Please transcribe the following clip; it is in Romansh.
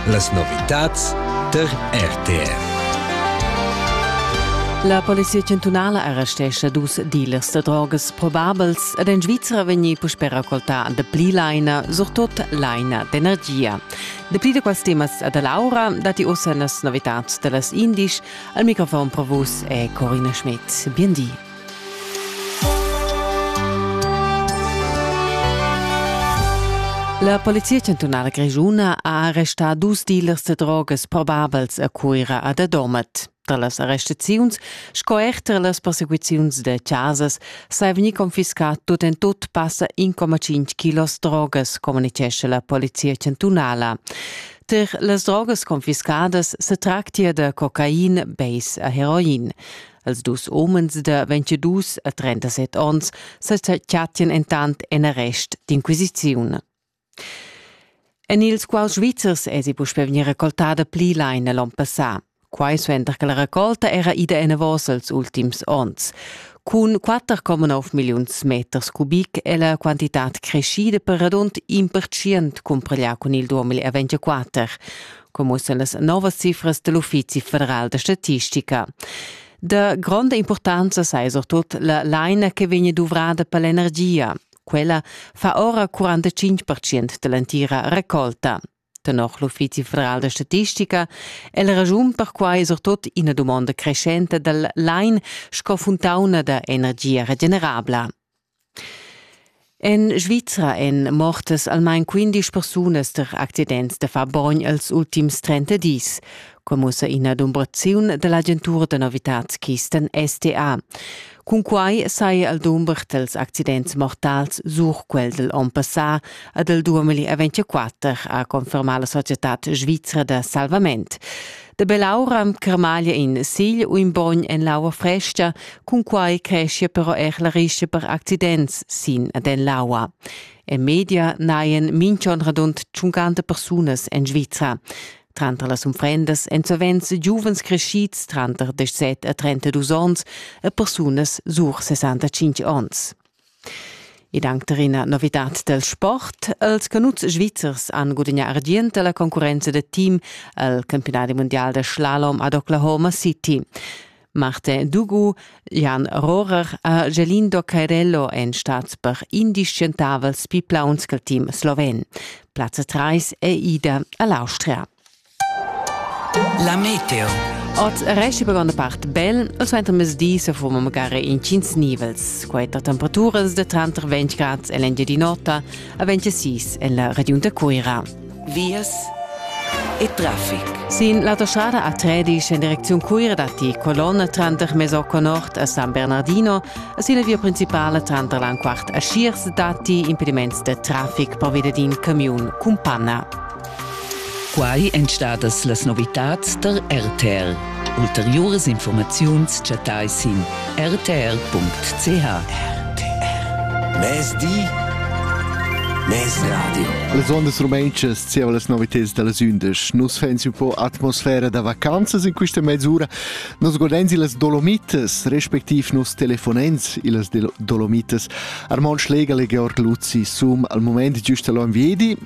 Las novitads tar RTR. La polizia chantunala arrestescha dus dealers da drogas probabels ed en Svizra vegni puspè raccoltà dapli laina, surtut laina d'energia. Dapli da quels temas da Laura datti ussa las novitads da las indisch. Al microfon pro vus è Corina Schmidt. Bien di. La Polizia chantunala grischuna ha arrestà dus dealers da drogas probabels a Cuira e da Domat. Tra las arrestaziuns sco er tra las persecuziuns da chasas sa è vegnì confiscà tut en tut passa 1,5 kilos drogas, communitgescha la Polizia chantunala. Tar las drogas confiscadas se tractia da cocain, beis e heroin. Els dus umens da 22 a 37 onns sa chattian entant en arrest d'inquisiziun. En ils quals Svizzers èsi puspè vegnì recoltada pli laina l'onn passà. Quai suenter che la racolta era ida enavos els ultims onns. Cun 4,9 milliuns meters cubic è la quantitad creschida per radund in percent cumparglià cun il 2024. commuossa las novas cifras dell Uffizi federal da statistica. Da gronda importanza sei surtut la laina che vegn duvrada per l'energia. Quella fa ora 45% dell'entira raccolta. Tenor l'Uffizi federal da statistica è la ragiun per quai surtut ina domanda crescente dal lain sco funtauna da energia regenerabla. En Svizra èn mortas almain quindisch persunas tar accidents da far bogn els ultims trenta dis, quai mussa ina dumbraziun da l'agentura da novitads Kisten STA. Cunquai saja el dumber dals accidents mortals sur quel dal onn passà ad el 2024, ha confermà la societad svizra da salvament. Da bell'aura cremaglia in sigl u in bogn en l'aua fresca, cun quai creschia però er la rischa per accidents sin ad en l'aua. En media naien minchon radund 50 persunas en Svizra. Tranter las unfrendas èn sovents giuvens crescids tranter 17 e 32 onns e persunas sur 65 onns. Ed anche per una novità del sport, els canuzs svizzers han gudagnà argient la concorrenza del team al campionati mondial de slalom ad Oklahoma City. Martin Dugu, Jan Rohrer e Gelindo Cairello en stats per indiscientavels pi plauns che team sloven. Platz 3 è ida all'Austria. La meteo. Ot resti per granda part bel, il suenter mesdi se fuma magari in cins nivels. Questa temperaturas de tranter 20 grad e l'engiadinota a 26 en la regione Cuira. Vias e traffic. Sin l'autostrada A13 in direzione Cuira dati colonna tranter Mesocco Nord a San Bernardino e sin la via principale tranter l'Anquart a Schiers dati impediments de traffic per via di un camion Cumpanna. Quai èn stadas las novitads tar RTR. Ulteriuras informaziuns chattai sin rtr.ch. Mezdi Mes radio. Las ondas rumantschas zieva las novitads da las undisch. Nus fens un po atmosfera da vacanzas in questa mezz'ura. Nos godens illas Dolomitas, respektiv nos telefonens illas Dolomitas. Armand Schläger e Georg Luzzi sum al moment giusta l'on viedi,